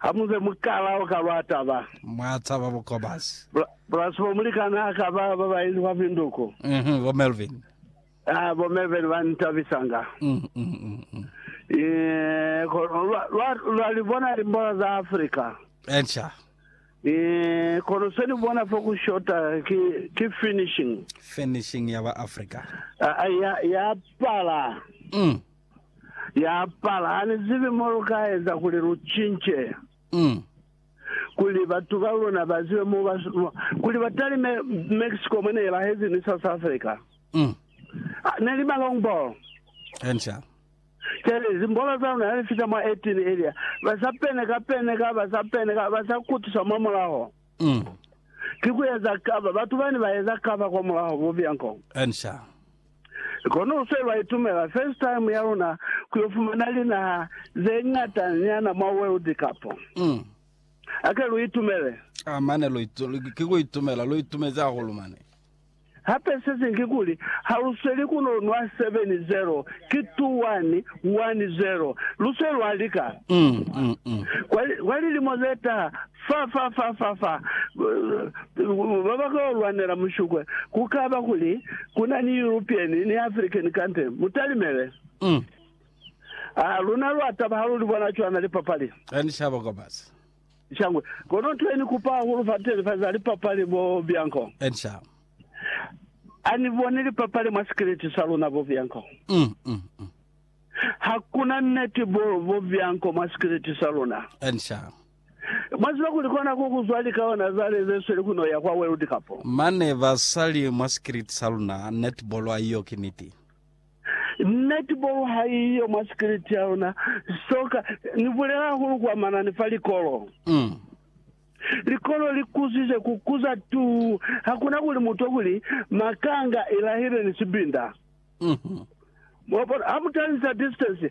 Ha mu be mukala o ka ba taba. Mwa taba bukobazi. Plus bo mulikan'a ha ka ba ba ba inzwa pinduku. Mhm, bo Melvin. Ah, bo Melvin ba ntabisanga. Mm, mm, mm, mm. Eh, kono lwa, lwa, lwa li bona limbola za Afrika. Entsha. Eh, kono se ni bona fo ku shota ki, ki finishing. Finishing ya ba Afrika. Ah, ah, ya, ya pala. Mm. ya apala. Ha ni zibi mo lu ka eza kuli lu cince. Mm. Kuli batu ba luna ba zibe mo ba, kuli ba talime Mexico mwe ne lahezi ni South Africa. Mm. Ah, ne li ma long ball. Enca. Kele zimbolo za luna ha li fita mwa 18 elia, ba sa pene ka pene ka, ba sa pene ka, ba sa kutusa mwa mulaho. Mm. Ki ku eza kava, batu bani ba eza kava kwa mulaho, bo bianco. Enca. Kono fe lwa itumela first time ya luna ku yo fumana linaha ze ñata nyana mwa World Cup. A ke lu itumele. A mane lu ki ku itumela, lu itumezi hahulu mane. Hape se siñwi kikuli, ha lu sweli ku no nwa 7-0, ki 2-1, 1-0. Lu se lwa lika. Kwa lilimo ze taha, Fa, fa, fa, fa, fa ba ba kao lwanela mushukwe, ku ka ba kuli ku na ni European ni African kante. Mu talimele. Ha luna lwa taba ha lu li bona cwana lipapali. Ha ni shaba kwa basi. Shangwe. Kono nto ye ni kupa hahulu fa telefazi ha lipapali bo Bianco. Ha ni boni lipapali mwa sikiliti sa luna bo Bianco. Ha ku na neti bo Bianco mwa sikiliti sa luna. Mwa ziba kuli kona ku kuzwa likaona zale ze sweli ku no ya kwa World Cup. Mane ba sa li mwa sikiliti sa luna, netball ha iyo ki niti. Netball ha iyo mwa sikiliti ya luna, soccer. Ni bulela hahulu kwa manani fa likolo. Mm. Likolo li kuzize ku kuza tuu, ha kuna kuli mu twa kuli makanga i lahile ni sibinda. Mm-hmm. Mwabona, ha mu talisa distance,